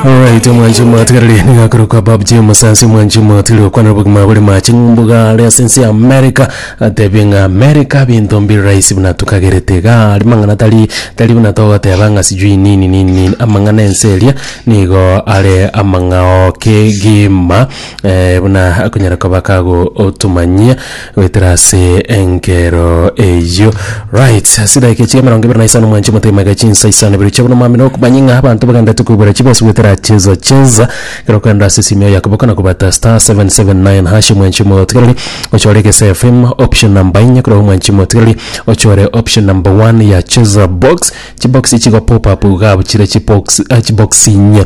Alright, mwanji mwatigarire nigakorokwa Bob J Musansi mwanji mwatire okwana bogima bore mache ngumbuga ari ase ense ya America atebe ng'a America binto mbiri rahisi buna tukagerete iga ari mang'ana tari tari buna togoteba ng'a sijui nini nini nini amang'ana ense eria nigo are amang'ao kegima eh, buna akonyara koba kagotumanyia Goetera ase enkero eyio right ase edaika echiga emerongo ebere na isano mwanche motemage chinsa isano ibere chia bonomami nokomanya ng'a abanto bagendete koibora chibosi goetera cheza cheza kero kando ase esimi ya yakobo kana kobata star 779 hash mwanche motigereri ochore egese fm option number inye kero mwanche motigereri ochore option number 1 ya cheza box chibox chigo pop up iga abuchire chibox eh, chibox inye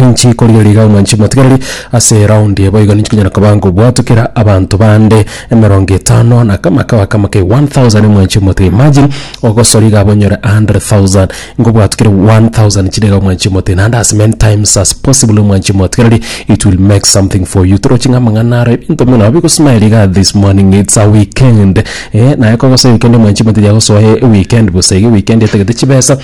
ninchi korigereria omwanchi omotigereri ase eraundi eye boigo ninchi konyara koba ngobwatokera abanto bande emerongo etano na kama kaba kama ke 1000 omwanchi omotiga imagine ogosori iga abonyore 100000 ngobwatokere 1000 chire iga omwanchi omotiga naende as many times as possible omwanchi omotigereri it will make something for you toroche ng'a amang'ana aro ebinto buna bigosmile iga this morning it's a weekend eh naye kogosa weekend omwanchi omotiga yagosoa eweekend bosa iga eweekend etagete chibesa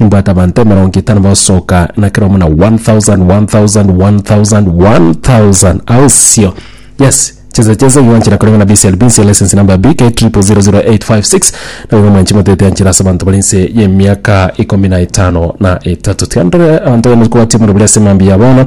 Nimbwate abanto emerongo etano bagosoka, na kera omonto na one thousand, one thousand, one thousand, one thousand. Ao isio, yes, chinsa chinsa igo ganchera koreng'ana BCL binsie license number BK triple zero zero eight five six, nabo igo mwanchi motete yanchera ase abanto bare inse y'emiaka ikomi na etano na etato. Tiga ndore abanto baye mokobwatia omorero bore ase mambia ya bono.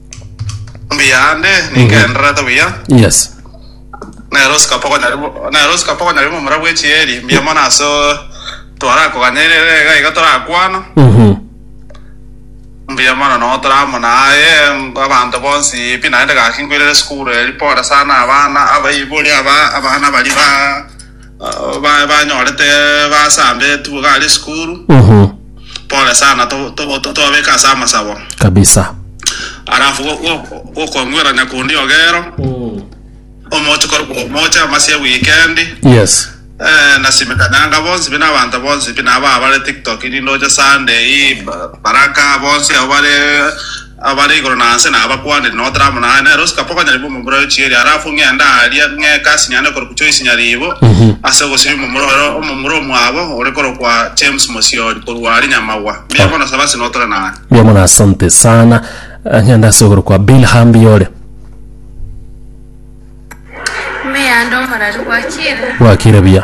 mbuya ande ningendererete buya Yes. nero sikapokonywa rimo nero sikapokonywa rimo omora bw'echieri mbuya mono ase twarakoganya ere ere iga iga torakwana Mhm. mbuya mono no toramona aye abanto bonsi pi naende gaki nkwirere sukuru eri pore sana abana abaibori aba abana bari ba uh, ba- banyorete basambetwe iga are esukuru Mhm. pole sana to- to- to- tobabeka ase amasabo kabisa alafu go- go- gokong'werania kundi ogero omoche kor- omoche amasi ewikendi yes Eh, nasimekanyanga bonsi bina abanto bonsi bina aba bare tiktok nindo oche sunday ba- baraka bonsi abo bare Abare igoro na nse nabakwanire, na otare amo naye, nere osike paka onyaribu omomura oyo chieri, halafu ng'ende aaria, ng'eeke ase nyanda ekorokwa Choisi Nyaribo, ase ogosiria omomura oyo, omomura omwabo ore korokwa James Mosiori, korwa aria Nyamagwa. Mbuya mono Saba ase notore naye. Mbuya mono asante sana. Ng'ende ase okorokwa Bill Hambi ore. Ime yande omorari gwakire. Gwakire buya.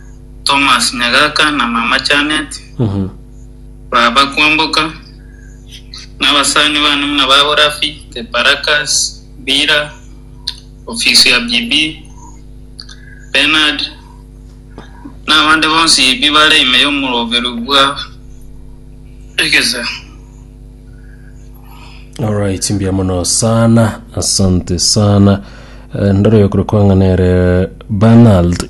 Thomas nyagaka na mama Janet, baba Kwamboka, nabasani bane buna babo Rafi, Teparacus, Bira, ofisi ya Bibi, Bernard, na abande bonsi bi bare ime y'omoroberu bwa egesao. Alright, mbuya mono sana, asante sana. Eh, Ndore oyo kuri kwang'ana ere Bernard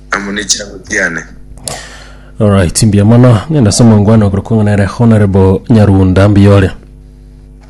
amo ne chianga chiane. Alright, mbuya mono. Ng'ende ase omongwana okorokwa ng'a nere Honourable Nyarunda. Mbuya ore.